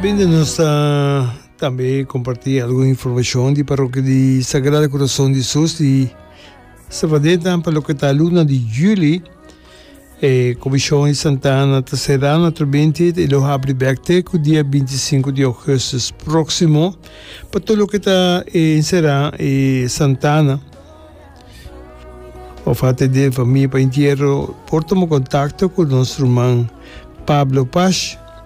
Bende nos ta tambe kompartí algun informashon di Parokia di Sagrado Kurason di Sus di Savaneta pa loke ta luna di juli. E komishon di Santa Ana ta será na Trobintit i lo habri bèk te ku dia binti i sinku di ougustus próksimo pa tur loke ta enserá e Santa Ana. Òf a tende famia pa entiero por tuma kontakto ku nos ruman Pablo Pash.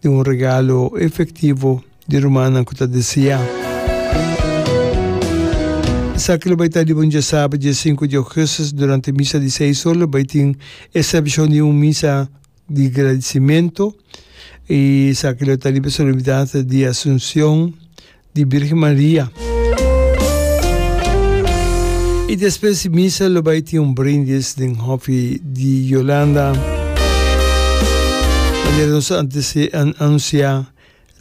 di un regalo efektivo di rumannan ku ta deseá. Esaki lo bai ta riba un diasabra dia sinku di ougùstus durante misa di seis ora. Lo bai tin e serbishon di un misa di gradisimentu i esaki lo ta riba solemnidat di Asunsion di Birgen Maria. Y despues di misa lo bay tin un brindis den hofi di Yolanda. Manera nos a anuncia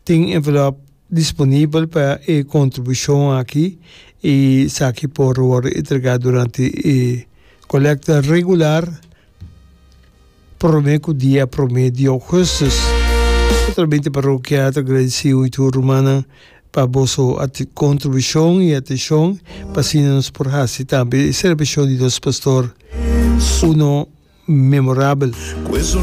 tin envelop disponibel pa e contribucion aki y esaki por wordo entrega durante e colecta regular. Prome ku dia prome di Augustus. Specialmente Parokia ta agradeci hui tur rumannan pa boso contribucion y atencion pa asina nos por haci tambe e celebracion di nos Pastor uno memorabel.